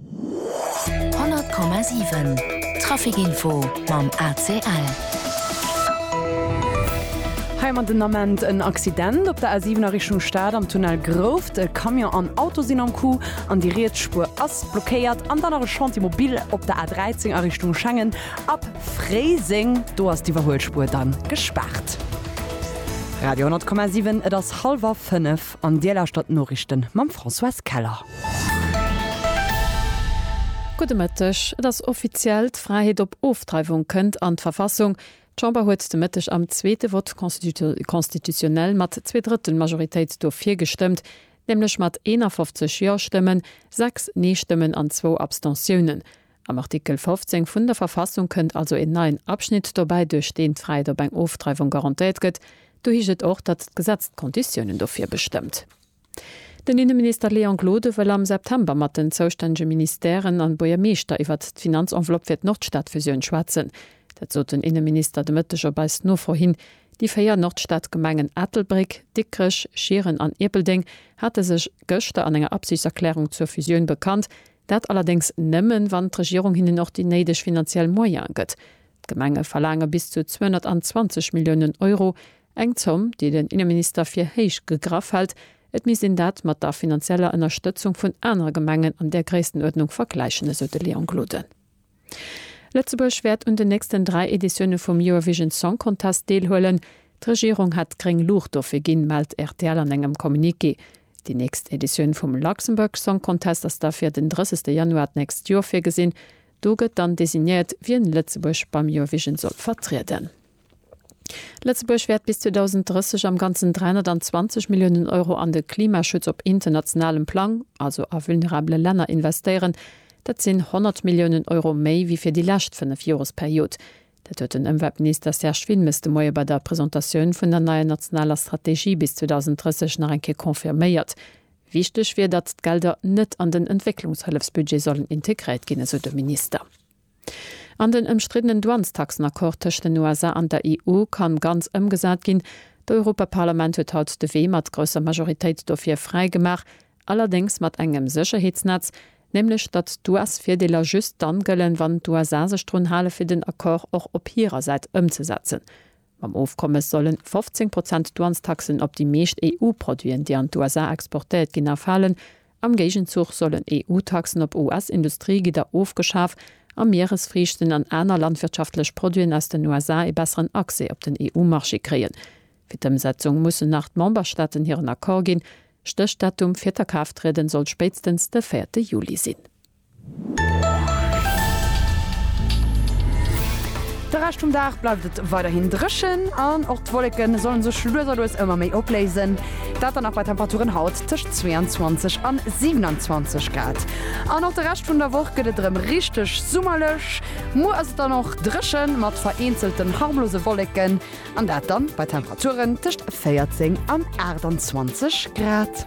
100,7 Traficinfo mam ACL. Hei man den Ament en Accident op der A7 a Richtung Stad am Tunnel Grouft. E Camion an Auto sinn am Coup an déi riets Spuer ass blockéiert. An dann nach e Chantier mobil op der A13 a Richtung Schengen ab Fréiseng. Do ass d'Iwwerhuelspuer dann gespaart. Radio 10,7 Et ass hallwer fënnef. An Dir lauschtert d'Noriichten mam Françoise Keller. Gudde Mëtteg. Et ass offiziell, D'Fräiheet op Ofdreiwung kënnt an d'Verfassung. D'Chamber huet de Mëtteg am zweete Vote constitutionnel mat Zweedrëttelmajoritéit dofir gestëmmt, nämlech mat 51 Jo-Stëmmen, 6 Nee-Stëmmen an zwou Abstentiounen. Am Artikel 15 vun der Verfassung kënnt also een neien Abschnitt dobäi, duerch deen d'Fräiheet op eng Ofdreiwung garantéiert gëtt. Do heescht et och, datt d'Gesetz d'Konditiounen dofir bestëmmt. Den Inneminister Léon Gloden wëll am September mat den zoustännege Ministèren an Buergermeeschter iwwert d'Finanzenveloppe fir d'Nordstadfusioun schwätzen. Dat sot den Inneminister de Mëtteg op eis Nofro hin. Déi véier Nordstadgemengen Ettelbréck, Dikrech, Schieren an Ierpeldeng hate sech gëschter an enger Absichtserklärung zur Fusioun bekannt. Dat allerdéngs nëmmen, wann d'Regierung hinnen och déi néideg finanziell Moyene gëtt. D'Gemenge verlaange bis zu 220 Milliounen Euro, eng Zomm, déi den Inneminister fir héich gegraff hält. Et misst een dat mat der finanzieller Ënnerstëtzung vun anere Gemengen an där Gréisstenuerdnung vergläichen, esou de Léon Gloden. Lëtzebuerg wäert un den nächsten dräi Editioune vum Eurovision Song Contest deelhuelen. D'Regierung hätt gréng Luucht dofir ginn, mellt rtl an engem Communiqué. Déi nächst Editioun vum Luxembourg Song Contest ass da fir den 30 Januar d'nächst Joer virgesinn. Do gëtt dann designéiert, wien Lëtzebuerg beim Eurovision soll vertrieden. Lëtzebuerg wäert bis 2030 am Ganzen 320 Milliounen Euro an de Klimaschutz op internationalem Plang, also a vulnerabele Länner, investéieren. Dat sinn 100 Milliounen Euro méi wéi fir déi lescht fënnef Joresperiod. Dat huet den Ëmweltminister Serge Wilmes de Moie bei der Presentatioun vun der neier nationaler Strategie bis 2030 nach eng Kéier confirméiert. Wichteg wier, datt d'Gelder net an den Entwécklungshëllefsbudget sollen integréiert ginn, esou de Minister. An den ëmstriddenen Douanestaxenaccord tëscht den USA an der EU kann ganz ëmgesat ginn. D'Europaparlament huet haut de Wee mat grousser Majoritéit dofir fräi gemaach, allerdéngs mat engem Sécherheetsnetz, nämlech datt d'US-Virdeeler just dann gëllen, wann d'USA sech drun halen, fir den Accord och op hirer Säit ëmzesetzen. Mam Ofkommes sollen 15 Prozent Douanestaxen op déi meescht EU-Produiten, déi an d'USA exportéiert ginn, erfalen. Am Géigenzuch sollen EU-Taxen op US-Industriegidder ofgeschaf a Mieresfriichten an aner landwirtschaftlech Produiten aus den USA ee besseren Accès op den EU-Marché kréien. Fir d'Ëmsetzung mussen nach d'Memberstaaten hiren Accord ginn. Stéchdatum fir d'A-Kraafttrieden soll spéitstens de véierte Juli sinn. De Rescht vum Dag bleift et weiderhin dréchen an och d'Wolleke solle sech lues a lues ëmmer méi opléisen. Dat dann nach bei Temperaturen haut tëscht 22 an 27 Grad. An och de Rescht vun der Woch gëtt et erëm richteg summerlech. Muer ass et dann och dréchen, mat vereenzelten harmlose Wolleken, an dat dann bei Temperaturen tëscht 14 an 28 Grad.